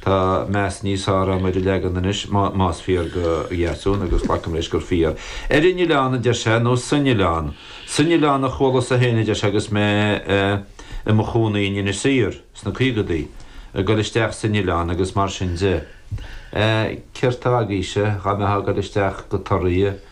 Tá meas níos fearr agam ar an leagan anois, más fíor do Dheasún, agus glacaim leis gur fíor. Ar an oileán, a deir sé, nó san oileán? San oileán a chualas-sa féin, a deir sé, agus mé i mo chónaí in Inis Oírr sna caogadaí. Ag dul isteach san oileán agus mar sin de. Céard tá agaibhse? Dá mbeifeá ag dul isteach go Toraigh.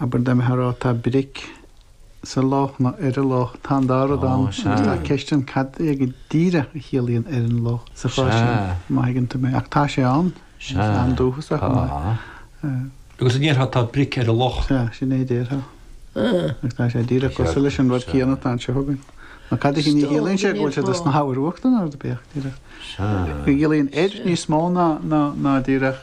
abair dá mbeifeá ag rá tá bric sa loch nó ar an loch tá an dá rud ann agus tá ceist ann cad é go díreach a chiallaíonn ar an loch sa chás sin má thuigeann tú mé ach tá sé ann is an-dúchasach an é? Agus an ndéarfá tá bric ar an loch? Sea, sin é a déarfá. Agus tá sé díreach cosúil leis an rud céanna atá anseo againn. Nó cad é sin cha chiallaíonn sé go bhfuil siad ag snámh abair ar uachtar nó rud ar bith díreach? Go gciallaíonn ar níos mó ná díreach?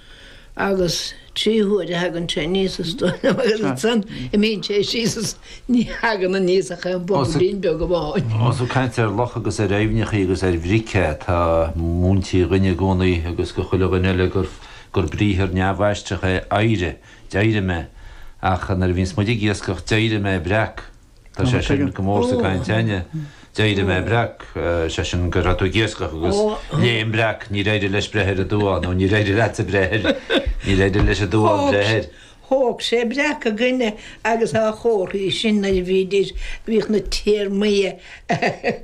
agus trí huaire a thagann sé aníos is dóigh liom agus ansan imíonn sé síos is ní thagann aníos ach aon bhobailín beag amháin. Ós ag caint ar locha agus ar aibhneacha agus ar bhric atá múintí dhúinn i gcónaí agus do chuile dhuine eile gur briathar neamhaistreach é 'éirigh', 'd'éirigh mé', ach nuair a bhíonns muid ag iascach 'd'éirigh mé breac'. Tá sé sin go mór sa gcaint a'inne. D'éirigh mé breac, sé sin, go raibh tú ag iascach agus léim breac, níor éirigh leis breith ar an duán, nó níor éirigh leatsa breith air, níor éirigh leis an duán breith air. Thóg sé breac againne agus dá chomhartha sin nuair a bhídís, bhíodh na téarmaí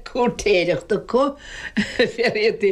cúirtéireachta acu, féach, iad a.